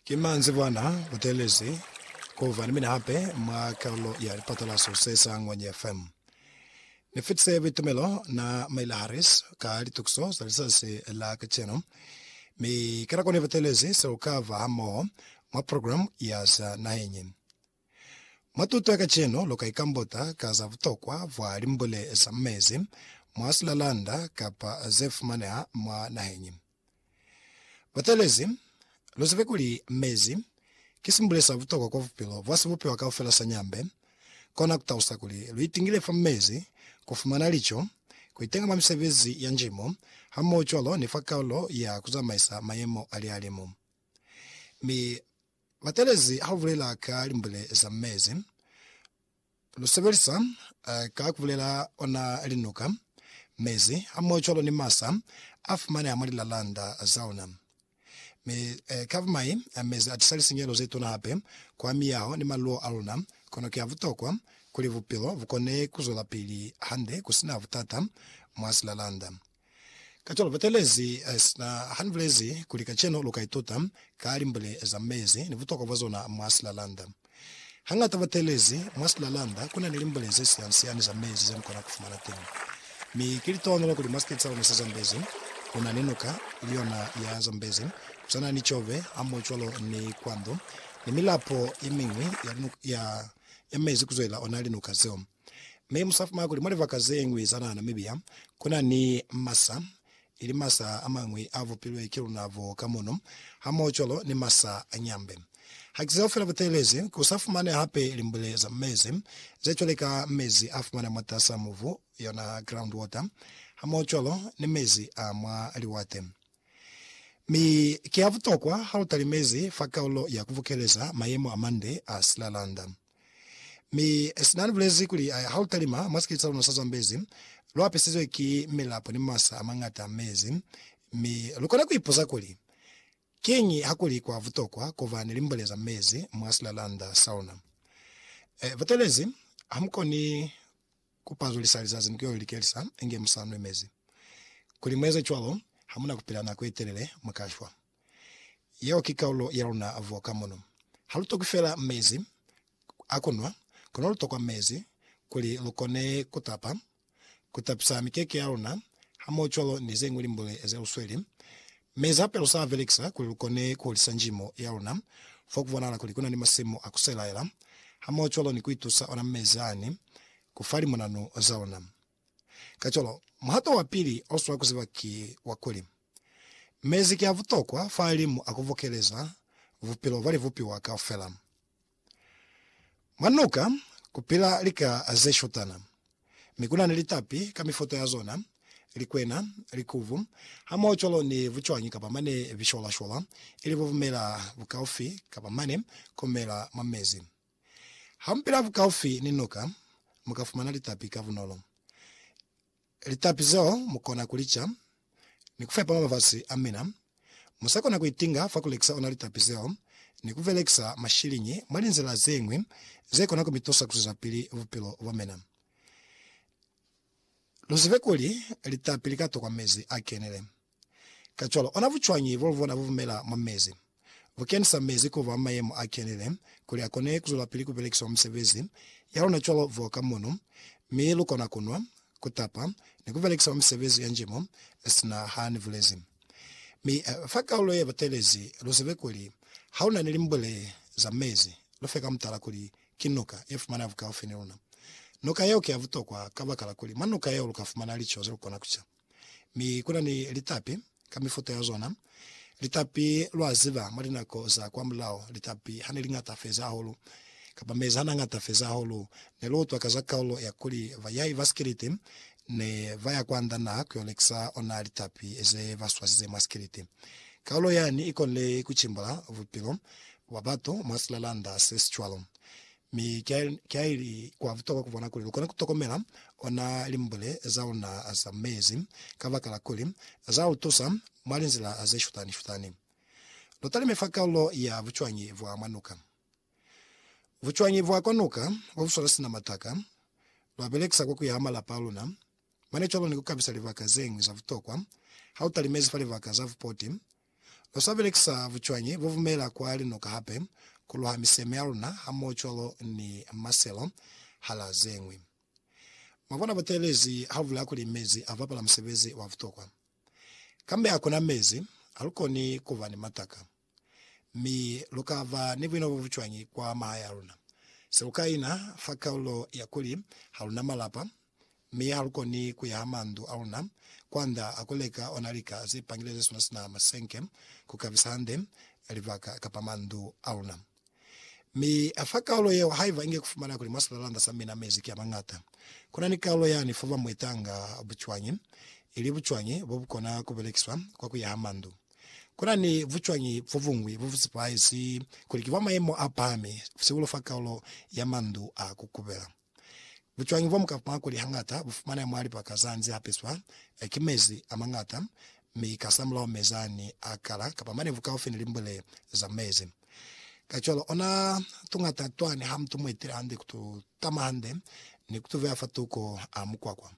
Ki manzibwana Buthelezi, Kuva ni mina hape mwa kalulo ya lipatalaso se sa Ngwenye FM. Ni fitise buitumelo na Maila Harris ka litukiso za lizazi la kacenu, mi ki na koni Buthelezi se lu kava hamoho mwa programu ya za naheñi. Mwa tuto ya kacenu lu ka ikambuta ka za butokwa bwa limbule za mezi mwa silalanda kapa ze fumaneha mwa naheñi. Batelezi, luzibe kuli mezi ki simbule sa butokwa kwa bupilo bwa sibupiwa kaufela sa nyambe. Kona kutalusa kuli luitingile fa mezi, kufumana lico, kuitenga mwa misebezi ya njimo, hamohocwalo ni fa kalulo ya kuzamaisa mayemo a lihalimu. Mi batelezi haubulela ka limbule za mezi, Lu sebelisa ka ku bulela ona linuka, mezi, hamohocwalo ni masa a fumaneha mwa lilalanda za ona. Mi ka bumai, mezi a tisa lisinyehelo ze tuna hape kwa miyaho ni maluwo a luna. Kono ki a butokwa kuli bupilo bu kone ku zwelapili hande ku si na butata mwa silalanda. Kacwalo Butelezi sina hanibulezi kuli kacenu luka ituta ka limbule za mezi ni butokwa bwa zona mwa silalanda. Hangata butelezi mwa silalanda kuna ni limbule ze siansiani za mezi ze mukona kufumana teñi. Mi ki litohonolo kuli mwa siketi sa luna sa Zambezi kuna ni nuka, ili yona ya Zambezi, kusana ni Chobe, hamohocwalo ni Kwando, ni milapo yemiñwi ya linuka ya mezi kuzwelela ona linuka zeo. Mi mu sa fumana kuli mwa libaka ze ñwi za naha Namibia ku na ni masa, ili masa a mañwi a vupilwe ki luna bo ka mono, hamohocwalo ni masa a nyambe. Ha ki zeo fela butelezi, ku sa fumane hape limbule za mezi, ze cwale ka mezi a fumana mwatas'a mubu, yona groundwater, hamohocwalo ni mezi a mwa liwate. Mi ki a butokwa ha lu talimezi fa kaulo ya ku bukeleza mayemo a mande a silalanda. Mi sina ni bulezi kuli, Ha lu talima mwa sikete sa luna sa Zambezi, lu apisizwe ki milapo ni masa a mañata a mezi. Mi lu kona ku ipuza kuli, Kiñi ha kuli kwa butokwa ku ba ni limbole za mezi mwa silalanda sa luna? E, butelezi, ha mu koni ku pazulisa lizazi ni ku yo li likelisa inge mu sa nwi mezi. Kuli mu eze cwalo, ha mu na ku pila nako ye telele, mu ka shwa. Yeo ki kaulo ya luna vo ka mono. Ha lu tokwi fela mezi a ku nwa, kono lu tokwa mezi kuli lu kone ku tapa, ku tapisa mikeke ya luna, hamohocwalo ni ze ñwi limbule ze lu sweli. Mezi hape lu sa a belekisa kuli lu kone ku hulisa njimo ya luna fo ku bonahala kuli ku na ni masimu a ku selaela, hamohocwalo ni ku itusa ona mezi ani ku fa limonanu za luna. Kacwalo, muhato wa pili o swanela ku ziba ki wa kuli, Mezi ki a butokwa fahalimu a ku bokeleza bupilo bwa libupiwa kaufela. Mwa nuka ku pila lika ze shutana, mi ku na ni litapi ka mifuta ya zona, likwena, likubu, hamohocwalo ni bucwañi kapa mane bishwalashwala, ili bo bumela bukaufi kapa mane ku mela mwa mezi. Hampela bukaufi ni nuka, mu ka fumana litapi ka bunolo. Litapi zeo mu kona ku li ca ni ku fepa mabafasi a mina. Mu sa kona ku itinga fa ku lekisa ona litapi zeo ni ku belekisa mashiliñi mwa linzila ze ñwi ze kona ku mi tusa ku zwezapili bupilo bwa mina. Lu zibe kuli litapi li ka tokwa mezi a kenile. Kacwalo, ona bucwañi bolubona bubumela mwa mezi? Bukenisa mezi kuba mwa mayemo a kenile kuli akone kuzwelapili kubelekiswa mwa misebezi yalona cwalo voka munu, mi lukona kunwa, kutapa, ni kubelekisa mwa misebezi ya njimo, sina ha nibulezi. Mi fa kaulo ye batelezi, luzebe kuli haluna ni limbule za mezi, lufe ka mutala kuli ki nuka yefumana bukaufi ni luna. Nuka yeo ki ya butokwa kabakala kuli mwa nuka yeo lukafumana lico zelukona kuca. Mi kuna ni litapi ka mifuta ya zona. Litapi, lwa ziba, mwa linako za kwamulaho, litapi hane liñata feza hahulu, kapa mezi hana ñata feza hahulu, ne lu utwa ka za kaulo ya kuli bayai ba sikiliti ne ba ya kwa nda naha ku yo lekisa ona litapi ze ba swasize mwa sikiliti. Kaulo yani i konile ku cimbula bupilo bwa batu mwa silalanda se si cwalo. Mi ki haili kwa butokwa kubona kuli lukona kutokomela ona limbule zauna za mezi, kabakala kuli zautusa mwa linzila zeshutani-shutani. Lutalime fa kaulo ya bucwañi bwa mwa nuka. Bucwañi bwa kwa nuka bobuswala sina mataka, lwabelekisa kwa kuyaha malapa aluna. Mane cwalo ni kukabisa libaka zeñwi za butokwa hautalimezi fa libaka za bupoti, Lu sa belekisa bucwañi bo bumela kwa linuka hape ku luha miseme ya luna hamohocwalo ni maselo, hala ze ñwi. Mwa bona buteelezi ha bu bulaya kuli mezi a bapala musebezi wa butokwa. Kambe ha ku na mezi, ha lu koni ku ba ni mataka. Mi lu ka ba ni buino bo bucwañi kwa mahaya a luna, se lu ka ina fa kaulo ya kuli ha lu na malapa, mi ha lu koni ku ya ha mandu a luna kwanda a ku leka ona lika ze pangile ze suna sina masenke ku kabisa hande libaka kapa mandu a luna. Mi a fa kaulo yeo haiba inge ku fumana kuli mwa silalanda sa mina mezi ki a mañata. Ku na ni kaulo yani fo ba mu itanga bucwañi, ili bucwañi bo bu kona ku belekiswa kwa ku ya ha mandu. Ku na ni bucwañi bo buñwi bo bu sepahaezi kuli ki bwa mayemo a pahami, sihulu fa kaulo ya mandu a ku kubela. Bucwañi bwa mukapwa kuli hañata bu fumaneha mwa lipaka za nze hapeswa ki mezi a mañata mi kasamulaho mezi ani a kala kapa manevu kaufi ni limbwele za mezi. Kacwalo, ona tuñata twani ha mutu muetile hande ku tu tama hande ni ku tu veya fa tuko a mukwakwa.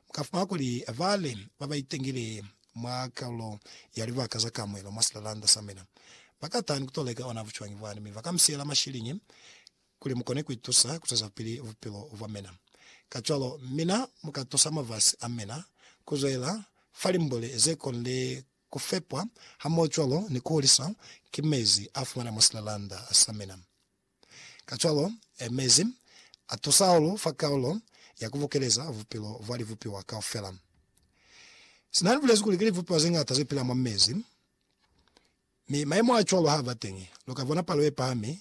Mu ka fumana kuli bale ba ba itengile mwa kalulo ya libaka za kamuelo mwa silalanda sa mina ba ka taha ni ku to leka ona bucwañi bwani mi ba ka mu siyela mashiliñi kuli mu kone ku itusa ku zwezapili bupilo bwa mina. Kacwalo, mina mu ka tusa mafasi a mina ku zwelela fa limbuli ze konile ku fepwa hamohocwalo ni ku huliswa ki mezi a fumana mwa silalanda sa mina. Kacwalo, mezi a tusa hahulu fa kalulo ya ku bukeleza bupilo bwa libupiwa kaufela. Sina ni bulezi kuli ki libupiwa ze ñata ze pila mwa mezi, Mi mayemo a cwalo ha ba teñi, lu ka bona palo ye pahami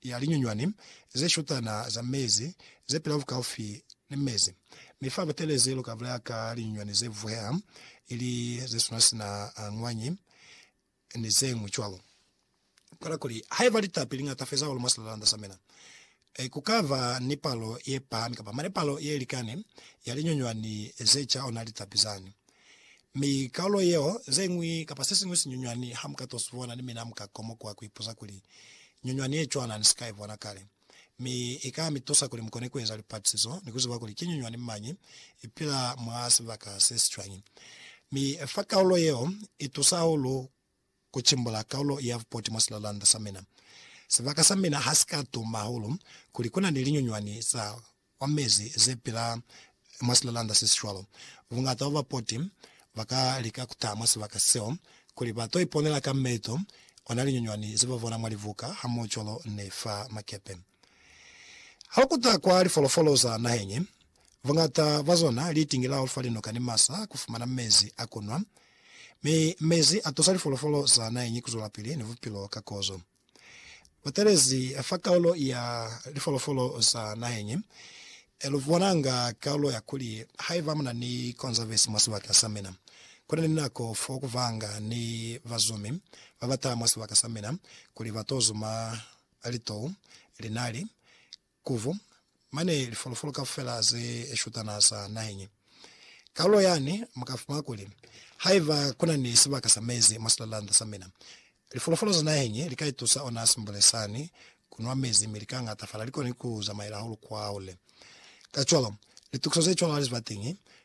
ya linyunywani ze shutana za mezi ze pila bukaufi ni mezi. Mi fa Butelezi lu ka bulaya ka linyunywani ze vuheha, ili ze suna sina a ñwanyi, ni ze ñwi cwalo. Kono kuli, haiba litapi li ñata feza hahulu mwa silalanda sa mina, Ee, ku ka ba ni palo ye pahami kapa mane palo ye likani ya linyunywani ze ca ona litapi zani. Mi kaulo yeo, ze ñwi kapa se siñwi sinyunywani ha mu ka to si bona, ni mina mu ka komokuha ku ipuza kuli, Nyunywani ye cwana ni si ka i bona kale. Mi i ka mi tusa kuli mu kone ku eza lipatisizo ni ku ziba kuli ki nyunywani mañi i pila mwa sibaka se si cwañi. Mi fa kaulo yeo i tusa hahulu. Ku cimbula kaulo ya vupoti mwa silalanda sa mina. Sibaka sa mina ha si ka tuma hahulu kuli ku na ni linyunywani za kwa mezi ze pila mwa silalanda se si cwalo. Buñata bwa bapoti ba ka lika ku taha mwa sibaka seo kuli ba to iponela ka meto ona linyunywani ze ba bona mwa libuka hamohocwalo ni fa makepe. Ha u kuta kwa lifolofolo za naheñi, Buñata bwa zona li itingelaho fa linoka ni masa ku fumana mezi a ku nwa, mi mezi a tusa lifolofolo za naheñi ku zwelapili ni bupilo ka kozo. Butelezi fa kaulo ya lifolofolo za naheñi lu bonanga kaulo ya kuli, Haiba muna ni konzavesi mwa sibaka sa mina, ku na ni nako fo ku vanga ni bazumi ba ba taha mwa sibaka sa mina kuli ba to zuma litou, linali, Kuvu, mane lifolofolo kaufela ze shutana za naheñi. Kalulo yani muka fumana kuli, Haiba kuna ni sibaka sa mezi mwa silalanda sa mina, lifolofolo za naheñi li ka itusa ona simbule sani ku nwa mezi mi li ka ñatafala, li koni ku zamaela hahulu kwa hole. Kacwalo, litukiso ze cwalo hali ziba teñi,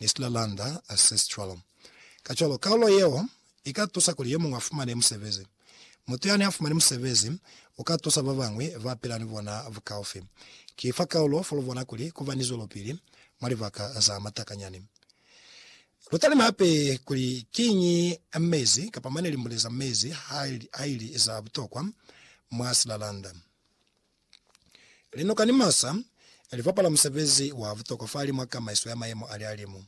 Nistler Lander a Sestral. Kacwalo, kaulo yeo i ka tusa kuli yo muñwi a fumane musebezi. Mutu yani a fumani musebezi u ka tusa ba bañwi ba pila ni bona bukaufi. Ki fa kaulo fo lu bona kuli ku ba ni zwelopili mwa libaka za matakanyani. Lu talime hape kuli kiñi mezi kapa mane limbule za mezi ha li za butokwa mwa silalanda. Linoka ni masa li bapala musebezi wa butokwa fa limo a kamaiso ya mayemo a lihalimu.